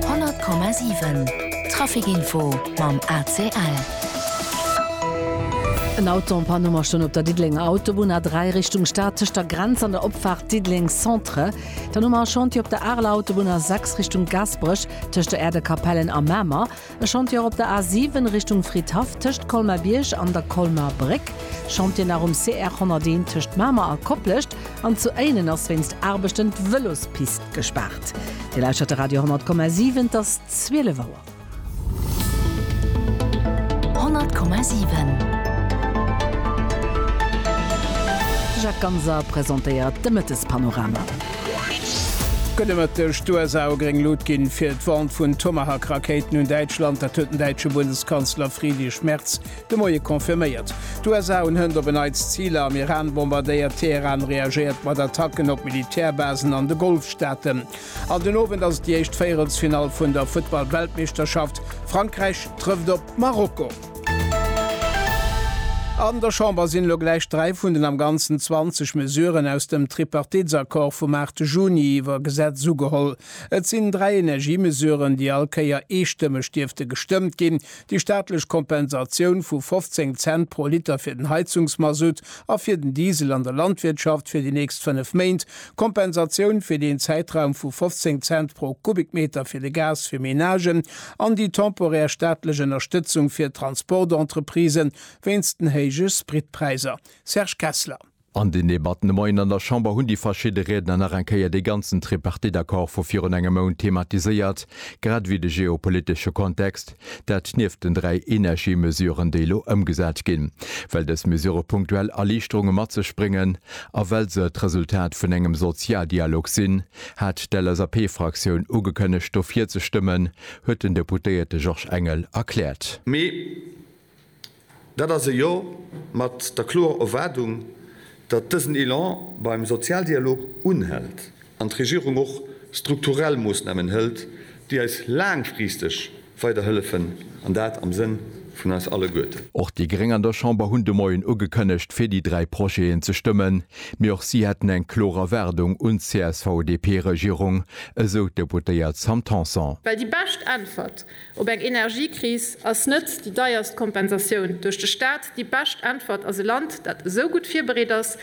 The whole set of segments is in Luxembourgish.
100,7 Trafic-Info mam ACL. En Auto en Panne mar stoun op der Diddelenger Autobunn A3 Richtung Stad tëscht der Grenz an der Opfaart Diddeleng Centre. Dann hu mer e Chantier op der Areler Autobunn A6 Richtung Gaasperech tëscht der Äerdekapellen a Mamer. E Chantier op der A7 Richtung Fridhaff tëscht Colmar-Bierg an der Colmarer Bréck, Chantier nach um CR 101 tëscht Mamer a Koplescht an zu Éinen ass wéinst Aarbechten d'Vëlospist gespaart. Dir lauschtert de Radio 10,7, et ass 12 Auer. 10,7 De Jacques Ganser presentéiert de Mëttespanorama. Gëtt e Mëtteg d'USA u gréng Lut ginn, fir d'Vente vun Tomahawk-Rakéiten un Däitschland? Dat huet den däitsche Bundeskanzler Friedrich Merz de Moie confirméiert. D'USA hunn hënt op en Neits Ziler am Iran bombardéiert. Teheran reagéiert mat Attacken op Militärbasen an de Golfstaaten. An den Owend ass et déi éischt Véierelsfinall vun der Futtball-Weltmeeschterschaft. Frankräich trëfft op Marokko. An der Chamber sinn elo gläich dräi vun den am Ganzen 20 Mesuren aus dem Tripartitsaccord vum 8 Juni iwwer Gesetz ugeholl. Et sinn dräi Energiemesuren, déi all Kéier eestëmmeg dierfte gestëmmt ginn, déi staatlech Kompensatioun vu 15 Cent pro Liter fir den Heizungsmasutt a fir den Diesel an der Landwirtschaft fir déi nächst fënnef Méint, Kompensatioun fir den Zäitraum vu 15 Cent pro Kubikmeter fir de Gas fir Menagen an déi temporär staatlech Ënnerstëtzung fir d'Transportentreprisen wéinst den héije Spritpräiser. Serge Kessler. An den Debatten de Moien an der Chamber hunn déi verschidde Riedner nach eng Kéier dee ganzen Tripartite-Accord vu virun engem Mount thematiséiert, grad ewéi de geopolitesche Kontext. Dat nieft den dräi Energiemesuren, déi elo ëmgesat ginn, well dës Mesurë punktuell Erliichterunge mat sech bréngen a well se d'Resultat vun engem Sozialdialog sinn, hat d'LSAP-Fraktioun ugekënnegt, dofir ze stëmmen, huet den Deputéierte Georges Engel erkläert. Mee Dat ass e Jo mat der kloer Erwaardung, datt dësen Elan beim Sozialdialog unhält an d'Regierung och strukturell Moossnamen hëlt, déi eis laangfristeg weiderhëllefen, an dat am Sënn vun eis alleguerten. Och déi Gréng an der Chamber hunn de Moien ugekënnegt, fir déi dräi Projeten ze stëmmen. Mee och si hätten eng kloer Erwaardung un d'CSV-DP-Regierung, esou d'Deputéiert Sam Tanson. Well déi bescht Äntwert Op eng Energiekris ass net déi deierst Kompensatioun duerch de Staat déi bescht Äntwert, ass e Land, dat esou gutt virbereet ass,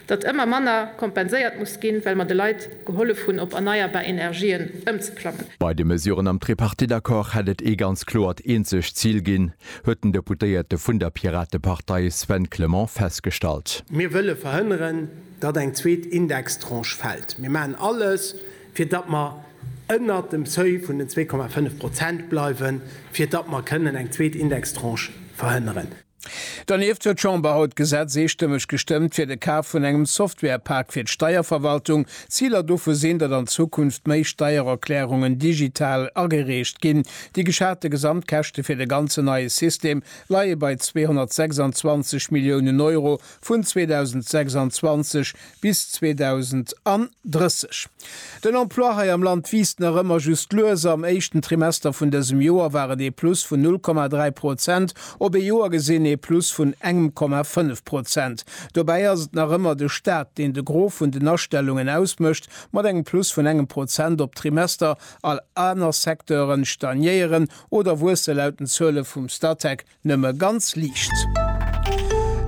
datt ëmmer manner kompenséiert muss ginn, well mer de Leit gehollef hunn, op erneierbar Energien ëmzeklammen. Bei de Mesuren am Tripartite-Accord hätt et ee ganz kloert eenzegt Zil ginn, huet den Deputéierte vun der Piratepartei Sven Clement festgestallt. Mir wëlle verhënneren, datt eng zweet Indextranche fält. Mir maachen alles, fir datt mer ënnert dem Seuil vun den 2,5 Prozent bleiwen, fir datt mer kënnen eng zweet Indextranche verhënneren. Donieft huet d'Chamber haut d'Gesetz eestëmmeg gestëmmt fir de Kaf vun engem Software-Pak fir d'Steierverwaltung. Ziler dovu sinn, datt an Zukunft méi Steiererklärungen digital agereecht ginn. Déi geschate Gesamtkäschte fir de ganzen neie System leie bei 226 Milliounen Euro vun 2026 Bis 2030. Den Emploi hei am Land wiisst nach ëmmer just lues. Am éischten Trimester vun dësem Joer war et ee Plus vun 0,3 Prozent, op ee Joer gesinn ee Plus vun engem Komma 5 Prozent. Dobäi ass et nach ëmmer de Staat, deen de Gros vun den Astellungen ausmécht, mat engem Plus vun engem Prozent op d'Trimester. All aner Secteuren stagnéieren oder wuesse laut den Zuele vum Statec Nëmme ganz liicht.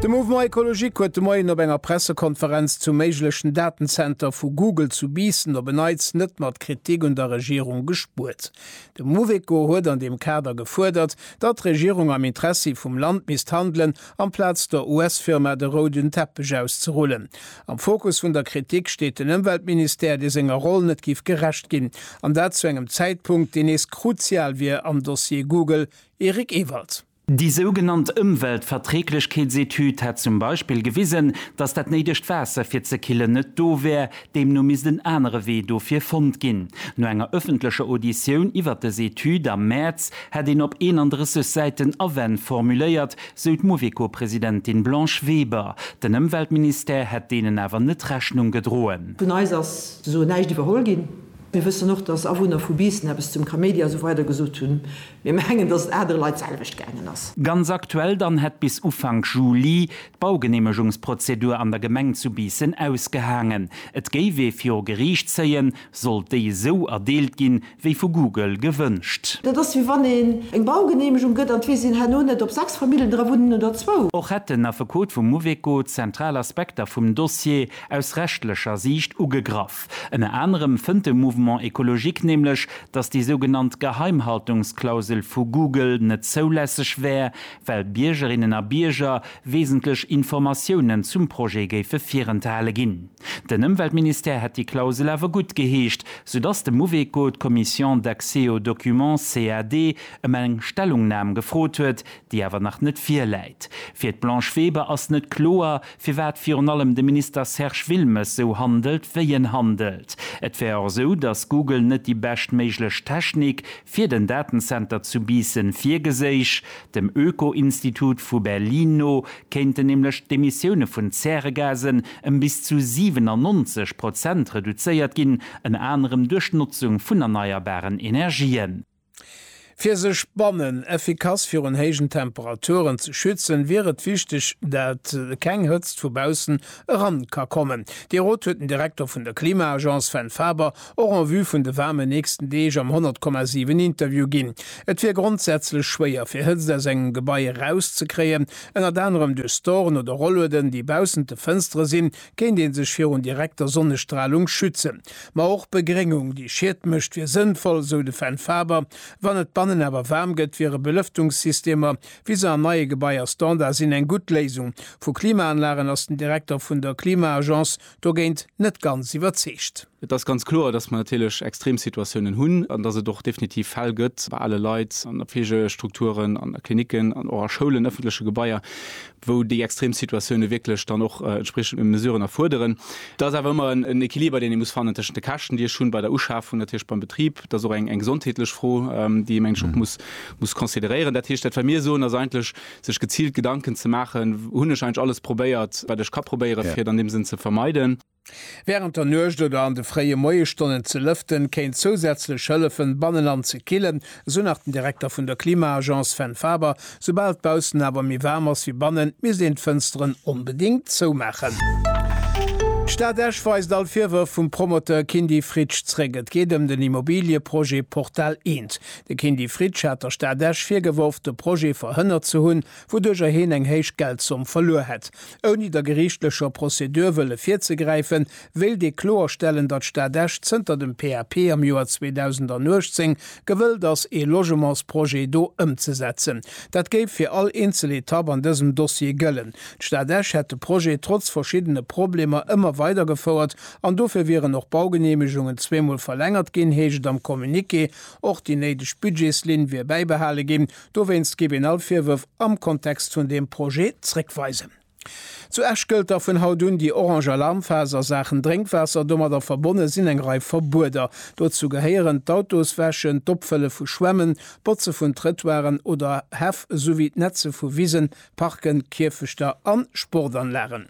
De Mouvement Ecologique huet de Moien op enger Pressekonferenz zum méiglechen Datenzenter vu Google zu Biissen op en Neits net mat Kritik un der Regierung gespuert. De Mouveco huet an deem Kader gefuerdert, datt d'Regierung am Interessi vum Land misst handelen, amplaz der US-Firma de rouden Teppech auszerullen. Am Fokus vun der Kritik steet den Ëmweltministère, dee senger Roll net géif gerecht ginn, an dat zu engem Zäitpunkt, deen nees kruzial wier am Dossier Google, Eric Ewald. Déi sougenannt Ëmweltverträglechkeetsetüd hätt zum Beispill gewisen, datt dat néidegt Waasser fir ze killen net do wär. Deemno misst en anere Wee dofir fonnt ginn. No enger ëffentlecher Auditioun iwwer dës Etüd am Mäerz hätt een op 31 Säiten Awänn formuléiert, sou d'Mouveco-Presidentin Blanche Weber. Den Ëmweltministère hätt deenen awer net Rechnung gedroen. Vun eis ass soen näischt iwwerholl ginn. Mir wëssen och, datt Awunner vu Biissen eppes zum Kaméidi a sou weider gesot hunn. Mir mengen, dass et anere Leit d'selwecht gaangen ass. Ganz aktuell dann hätt bis Ufank Juli d'Baugeneemegungsprozedur an der Gemeng zu Biissen ausgehaangen. Et géif ee viru Geriicht zéien, sollt déi esou erdeelt ginn, wéi vu Google gewënscht. Dat ass wéi wann een eng Baugeneemegung gëtt an et weess een herno net, ob 6 Famillen dra wunnen oder zwou. Och hätt den Affekot vum Mouveco zentral Aspekter vum Dossier aus rechtlecher Siicht ugegraff. Ënner anerem fënnt de Mouvement Ecologique nämlech, datt déi sougenannt Geheimhaltungsklausel vu Google net zoulässeg wär, well Biergerinnen a Bierger wesentlech Informatiounen zum Projet géife virenthale ginn. Den Ëmweltministère hätt déi Klausel awer gutt geheescht, soudatt de Mouveco d'Commission d'accès aux documents, CAD, ëm eng Stellungnam gefrot huet, déi awer nach net virläit. Fir d'Blanche Weber ass net kloer, firwat virun allem de Minister Serge Wilmes sou handelt, wéi en handelt. Et wär och esou, datt Google net déi bescht méiglech Technik fir den Datenzenter zu Biissen virgeséich. Dem Öko-Institut vu Berlin no kéinten nämlech d'Emissioune vun Zäregasen ëm bis zu 97 Prozent reduzéiert ginn, ënner anerem duerch d'Notzung vun erneierbaren Energien. Fir sech bannen effikass virun héijen Temperaturen ze schützen, wier et wichteg, dat keng Hëtzt vu baussen eran ka kommen. Dee Rot huet den Direkter vun der Klima-Agence Sven Faber och en vue vun de waarmen nächsten Deeg am 100,7 Interview ginn. Et wier grondsätzlech schwéier fir Hëtzt aus engem Gebai erauszekréien, ënnert anerem duerch Storen oder Rollueden, déi baussent de Fënstere sinn, kéint ee sech virun direkter Sonnestralung schützen. Ma och Begréngung, déi Schiet mécht, wier sënnvoll, sou de Fenn Faber. Wann et bannen awer waarm gëtt, wiere Belëftungssystemer, wéi se an neie Gebaier Standard sinn, eng gutt Léisung. Vu Klimaanlagen ass den Direkter vun der Klima-Agence dogéint net ganz iwwerzeegt. Et ass ganz kloer, dass mer natierlech Extremsituatiounen hunn an dass et och definitiv Fäll gëtt bei ale Leit an a Fleegestrukturen, an a Klinicken an och a Schoulen, ëffentleche Gebaier, wou déi Extremsituatioune wierklech dann och entspriechend Mesuren erfuerderen. Et ass awer ëmmer en Equiliber, deen ee muss fannen tëschent de Käschten, déi ech hunn bei der Uschafung, natierlech beim Betrib, et ass och eng gesondheetlech Fro, déi ee meng ech och muss consideréieren. Dat heescht, dat wat mir soen, ass eigentlech, sech geziilt Gedanken ze maachen, Hunn ech eigentlech alles probéiert, wat ech ka probéieren, fir et an deem Sënn ze vermeiden? Wärend der Nuecht oder an de fréie Moiesstonnen ze lëften, kéint zousätzlech hëllefen, banneland ze killen, esou nach den Direkter vun der Klima-Agence Sven Faber. Soubal d'Baussen awer méi waarm ass wéi bannen, misst een d'Fënsteren onbedéngt zoumaachen. D'Stad Esch weist all Virwërf vum Promoteur Kindy Fritsch zréck. Et geet ëm den Immobiliëprojet Portal Eent. De Kindy Fritsch hat der Stad Esch virgeworf, de Projet verhënnert ze hunn, wouduercher heen eng héich Geldzomm verluer hätt. Ouni der geriichtlecher Prozedur wëlle virzegräifen, wéilt ee kloerstellen, datt d'Stad Esch zënter dem PAP am Joer 2018 gewëllt ass, ee Logementsprojet do ëmzesetzen. Dat géif fir all eenzel Etapp an dësem Dossier gëllen. D'Stad Esch hätt de Projet trotz verschiddene Problemer ëmmer weidergefouert an dofir wieren och Baugeneemegungen zweemol verlängert ginn, heescht et am Communiqué. Och déi néideg Budgetslinn wier bäibehale ginn. Dowéinst géif een all Virwërf am Kontext vun deem Projet zréckweisen. Zu Esch gëllt da vun haut un déi orange Alarmphas a Saachen Drénkwaasser. Domadder verbonne sinn eng Rei Verbueder. Dozou gehéieren d'Autos wäschen, d'Opfëlle vu Schwämmen, d'Botze vun Trëttoiren oder Häff esouwéi d'Netze vu Wisen, Parken, Kierfechter an Sportanlagen.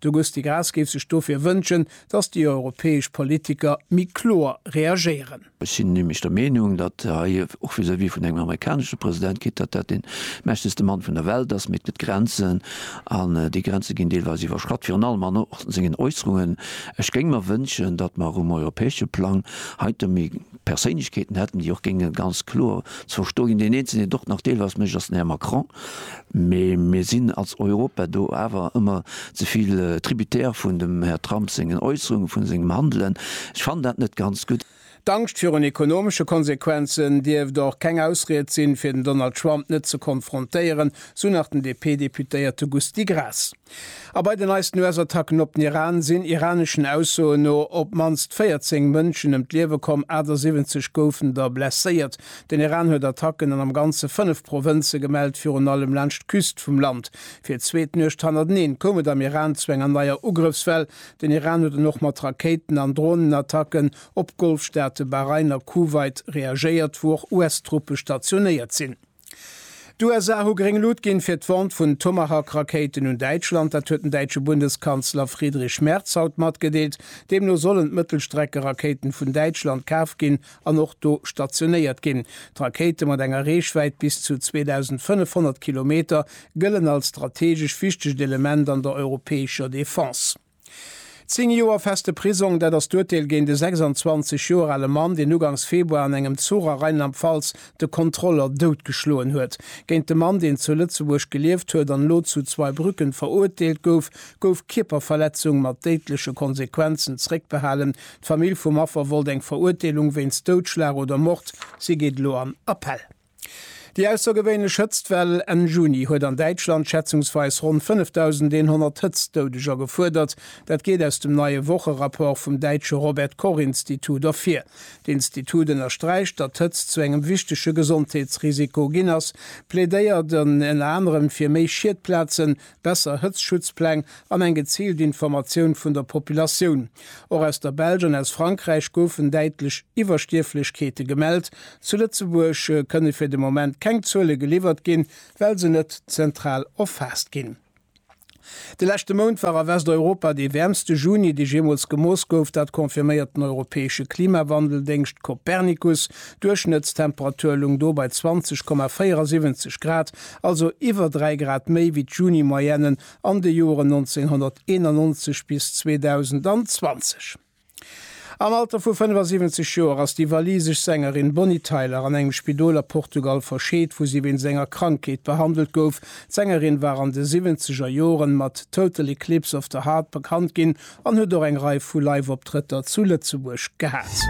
De Gusty Graas géif sech dofir wënschen, datt déi europäesch Politiker méi kloer reagéieren. Ech sinn nämlech der Meenung, datt hei och vis-à-vis vun engem amerikanesche President geet, datt dat dee mächtegste Mann vun der Welt ass. Mee et gëtt Grenzen, an déi Grenze ginn deelweis iwwerschratt, virun allem an sengen Äusserungen. Ech géing mer wënschen, datt mer um europäesche Plang heite méi Perséinlechkeeten hätten, déi och géinge ganz kloer ze verstoe ginn. Deen eenzelen, deen et och nach deelweis mécht, ass den Här Macron. Mee mir sinn als Europa do awer ëmmer ze vill Tributaire vun dem Här Trump sengen Äusserungen, vun sengem Handelen. Ech fannen dat net ganz gutt. D'Angscht virun ekonomesche Konsequenzen dierft och keng Ausried sinn, fir den Donald Trump net ze konfrontéieren, sou nach den DP-Deputéierte Gusty Graas. A bei den neisten US-Attacken op den Iran sinn iraneschen Aussoen no op d'mannst 14 Mënschen ëm d'Liewe komm, 78 goufen der blesséiert. Den Iran huet Attacken an am Ganze fënnef Provënze gemellt, virun allem laanscht d'Küst vum Land. Fir d'zweet Nuecht hannerteneen koum et am Iran zu enger neier Ugrëffswell. Den Iran huet dann och mat Rakéiten an Dronenattacken op d'Golfstaate Bahrain a Kuwait reagéiert, wou och US-Truppe stationéiert sinn. D'USA hu gréng Lut ginn, fir d'Vente vun Tomahawk-Rakéiten un Däitschland. Dat huet den däitsche Bundeskanzler Friedrich Merz haut matgedeelt. Deemno sollen d'Mëttelstreckerakéiten vun Däitschland kaaft ginn an och do stationéiert ginn. D'Rakéite mat enger Reechwäit bis zu 2.500 Kilometer gëllen als strategesch wichtegt Element an der europäescher Defense. Zéng Joer feste Prisong, dat ass d'Urteel géint e 26 Joer ale Mann, deen ugangs Februar an engem Zuch a Rheinland-Pfalz de Kontroller doutgeschloen huet. Géint de Mann, deen zu Lëtzebuerg gelieft huet an elo zu Zweibrücken verurteelt gouf, gouf Kierperverletzung mat déidleche Konsequenzen zréckbehalen. D'Famill vum Affer wollt eng Verurteelung wéinst Doutschlag oder Mord. Si geet elo an Appell. Déi aussergewéinlech Hëtztwell Enn Juni huet an Däitschland schätzungsweis ronn 5.100 Hëtztdoudeger gefuerdert. Dat geet aus dem neie Wocherapport vum däitsche Robert-Koch-Institut ervir. D'Institut ënnersträicht, datt d'Hëtzt zu engem wichtege Gesondheetsrisiko ginn ass, plädéiert ënner anerem fir méi Schiedplazen, besser Hëtztschutzpläng an eng geziilt Informatioun vun der Populatioun. Och aus der Belsch an aus Frankräich goufen däitlech Iwwerstierflechkeete gemellt. Zu Lëtzebuerg kënne fir de Moment keng Zuele geliwwert ginn, well se net zentral erfaasst ginn. De leschte Mount war a Westeuropa dee wäermste Juni, dee jeemools gemooss gouf. Dat confirméiert den europäesche Klimawandeldéngscht Copernicus. D'Duerchschnëttstemperatur loung do bei 20,74 Grad. also iwwer 3 Grad méi wéi d'Juni-Moyenne an de Joeren 1991 bis 2020. Am Alter vu 75 Joer ass déi walisesch Sängerin Bonnie Tyler an engem Spidol a Portugal verscheet, wou si wéinst enger Krankheet behandelt gouf. D'Sängerin war an de siwwenzeger Joren mat Total Eclipse of the Heart bekannt ginn, an huet och eng Rei vu Live-Optrëtter zu Lëtzebuerg gehat.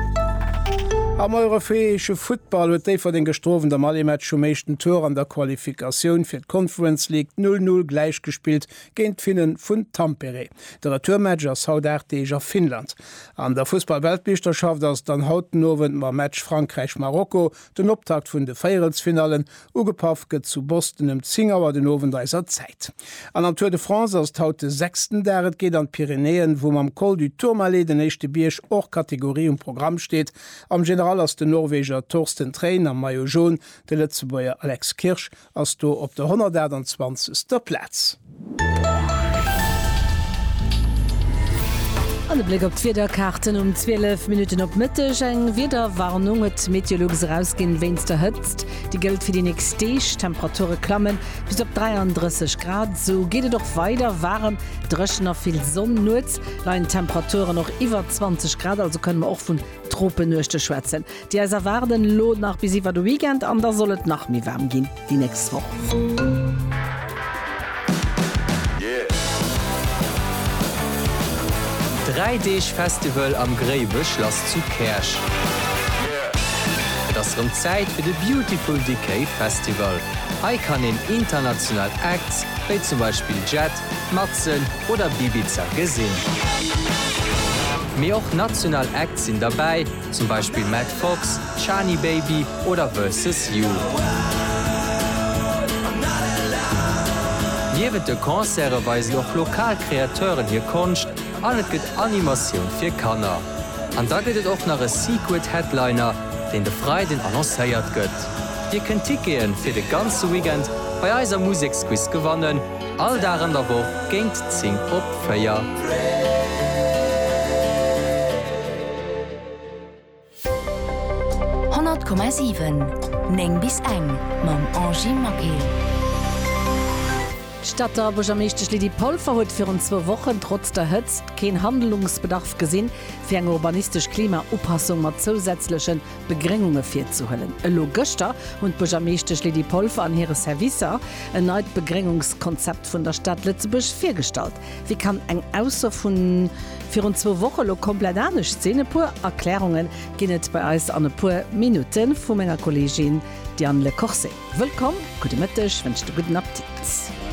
Am europäesche Futtball huet Déifferdeng Gestrowen am Allematch um éischten Tour an der Qualifikatioun fir d'Conference League 0, 0 gläich gespillt géint d'Finnen vun Tampere. De Retourmatch ass haut 8 Deeg a Finnland. An der Fussball-Weltmeeschterschaft ass et dann haut den Owend mam Match Frankräich-Marokko Den Optakt vun de Véierelsfinallen, ugepaff gëtt zu Boston ëm 10 Auer den Owend eiser Zäit. An am Tour de France ass et haut de sechsten Dag. Et geet an d'Pyrenäen, wou mam Col du Tourmalet den éischte Bierg hors catégorie um Programm steet. Am General ass den Norweger Torsten Train am Maillot Jaune de Lëtzebuerger Alex Kirsch ass do op der 128. Plaz. An e Bléck op d'Wiederkaarten um 12 Minutten op Mëtteg. Eng Wiederwarnung huet d'Meteolux erausginn wéinst der Hëtzt. Déi gëllt fir déi nächst Deeg. D'Temperature klamme bis op 33 Grad. Sou geet et och weider, waarem, dréchen a vill Sonn. Nuets leien d'Temperaturen och iwwer 20 Grad, also kënne mer och vun Tropenuechte schwätzen. Déi eis erwaarden elo nach bis iwwer de Weekend an da soll et nach méi waarm ginn déi nächst Woch. Dräi Deeg Festival am Gréiwechlass zu Käerch. Et ass rëm Zäit fir de Beautiful Decay Festival. Hei kann een international Acts wéi zum Beispill Jet, Matzen oder Bibiza gesinn. Mee och national Acts sinn derbäi. zum Beispill Matt Fox, Shani Baby oder Versus You. Niewent de Concerte weisen och lokal Kreateuren hir Konscht an et gëtt Animatioun fir Kanner. An da gëtt et och nach e Secret Headliner, deen de Freiden annoncéiert gëtt. Dir kënnt Tickete fir de ganze Weekend bei eiser Museksquiz gewannen. All Dag an der Woch géint 10 op 4. Komma 7 9 bis eng mam Angie Maquet. D'Stadter Buergermeeschtesch Lydie Polfer huet virun zwou Wochen trotz der Hëtzt keen Handelungsbedarf gesinn, fir eng urbanistesch Klima-Upassung mat zousätzlechen Begréngunge virzehuelen. Elo gëschter hunn d'Buergermeeschtesch Lydie Polfer an hire Servicer en neit Begréngungskonzept vun der Stad Lëtzebuerg virgestallt. Wéi kann eng Ausso vu virun zwou Woche lo komplett anescht sinn? E puer Erklärunge ginn et bei eis an e puer Minutte vu menger Kolleegin Diane Le Corset. Wëllkomm, gudde Mëtteg, wënscht e gudden Appetit.